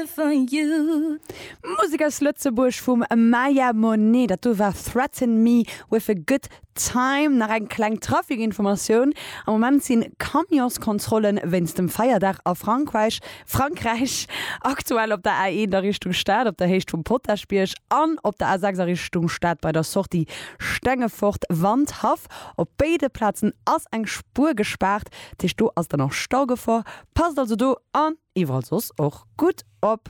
Musek aus Lëtzebuerg vum Maya Monet, dat do war Threaten Me With A Good Time. Nach eng kleng Trafikinformatioun, Am Moment sinn d'Camionskontrollen wéinst dem Feierdag a Frankreich Frankräich aktuell op der A1 a Richtung Stad op der Héicht vum Potaschbierg an op der A6 a Richtung Stad bei der Sortie Stengefort Wandhaff. Op béide Plazen ass eng Spuer gespaart, dat heescht do ass dann och Staugefor. Passt also do an. Iwwerall soss och gutt op.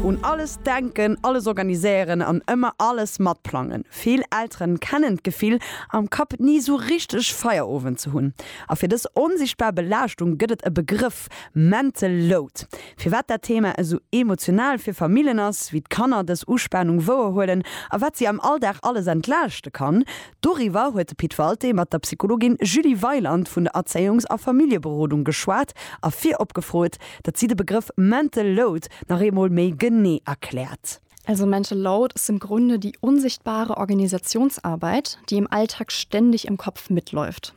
Un alles denken, alles organiséieren an ëmmer alles matplangen. Vill Elteren kennen d'Gefill, am Kapp ni sou richteg Feierowend ze hunn. A fir dës onsichtbar Belaaschtung gëtt et e Begrëff, Mental Load. Firwat dat Thema esou emotional fir Famillen ass, wéi d'Kanner dës Uspanung wouerhuelen a wat si am Alldag alles entlaaschte kann, Doriwwer huet de Pit Walté mat der Psychologin Julie Weiland vun der Erzéiungs a Familljeberodung geschwat a virop gefrot, datt si de Begrëff mental load nach eemol méi genee erkläert. Also mental load ist im Grunde die unsichtbare Organisationsarbeit, die im Alltag ständig im Kopf mitläuft.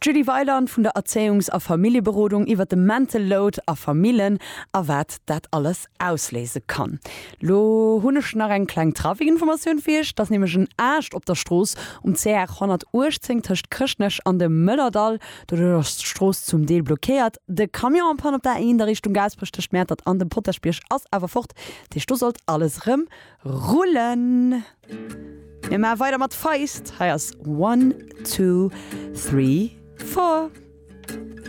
D'Julie Weiland vun der Erzéiungs a Familljeberodung iwwer de Mental Load a Famillen a wat dat alles ausléise kann. Lo hunn ech nach eng kleng Trafikinformatioun fir Iech. Et ass nämlech en Aascht op der Strooss um CR 118 tëscht Chrëschtnech an dem Mëllerdall. Doduerch ass d'Strooss zum Deel blockéiert. De Camion am Panne op der A 1 a Richtung Gaasperech tëscht Mäertert an dem Potaschbierg ass awer fort. Dat heescht do sollt alles erëm rullen. Mir maache weider mat Feist, hei ass One, Two, Three, Four.